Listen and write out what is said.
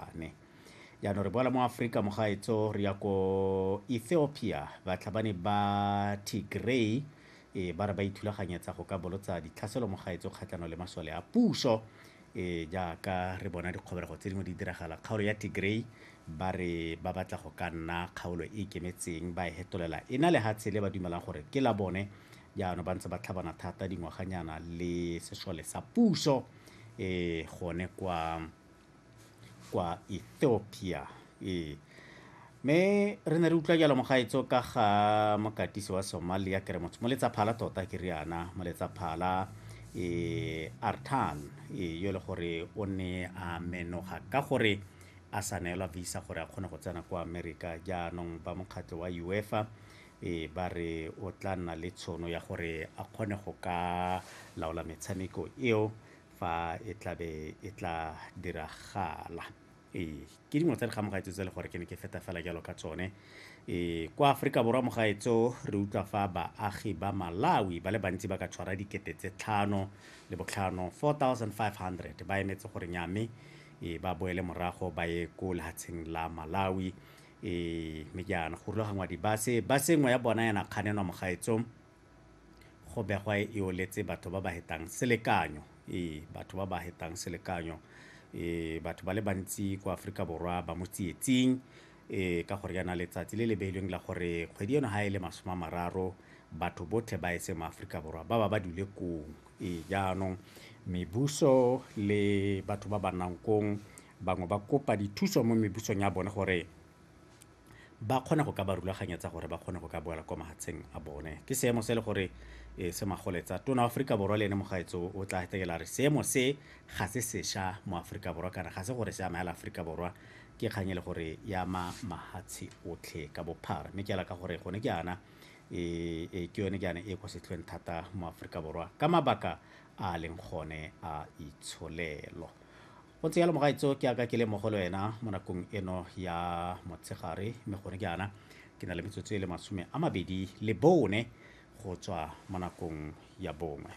Ane. jaanong re boela mo aforika mogaetso re ya ko ethiopia batlhabani ba tigray e ba re ba ithulaganyetsa go ka bolotsa ditlhaselo mogaetso kgatlhanong le masole a puso e jaaka re bona dikgobelego tse dingwe di diragala kgaolo ya tigray ba re ba batla go ka nna kgaolo e ikemetseng ba e hetolela e na lehatshe le ba dumelang gore ke la bone jaanong ba ntse ba tlhabana thata dingwaganyana le sesole sa puso e gone kwa kwa ethiopia ee me re ne re utlwa jalo mogaetso ka ga mokatisi wa somalia ke re motho mo letsaphala tota ke riana mo letsaphala e artan e yo le gore o ne a menoga ka gore a sa neelwa visa gore a kgone go tsena kwa america jaanong ba mokgatlho wa uefa e ba re o tla nna le tshono ya gore a kgone go ka laola metshameko eo fa e tlabe e tla diragala ee ke dingwe tsa dikgamogaetso tse le gore ke ne ke feta fela jalo ka tsone ee kwa aforika borwa mogaetso re utlwa fa baagi ba malawi ba le bantsi ba ka tshwara dikete tse tlhano le botlhano 4500 ba emetse gore nyame ee ba boele morago ba ye ko lehatsheng la malawi ee mme jaana go rulagangwa dibase base nngwe ya bona yana kganenwa mogaetsong Go begwa e eoletse batho ba ba hetang selekanyo. Ee, batho ba ba hetang selekanyo. Ee, batho ba le bantsi kwa Aforika Borwa ba mo tsietsing ee, ka gore yana letsatsi le le beilweng la gore kgwedi eno ga e le masome a mararo batho botlhe ba etse mo Aforika Borwa ba ba ba dule kong. Ee, jaanong mebuso le batho ba ba nnang kong bangwe ba kopa dithuso mo mebusong ya bone gore ba kgone go ka ba rulaganyetsa gore ba kgone go ka boela kwa mahatsheng a bone ke seemo se e le gore e, se magoletsa tona aforika borwa le ene mogaetso o tla etekela re seemo se ga se sesha mo aforika borwa kana ga se gore se amela aforika borwa ke kgang e le gore ya ma mahatshe otlhe ka bophara mme ke ala ka gore gone ke ana e, e ke yone ke ane e kwa setlhweng thata mo aforika borwa ka mabaka a leng gone a itsholelo go tse yalo mogaetso ke aka ke le mo go le wena mo nakong eno ya motshegare mme gone ke ana ke na le metsotso e le masome a mabedi le bone go tswa mo nakong ya bongwe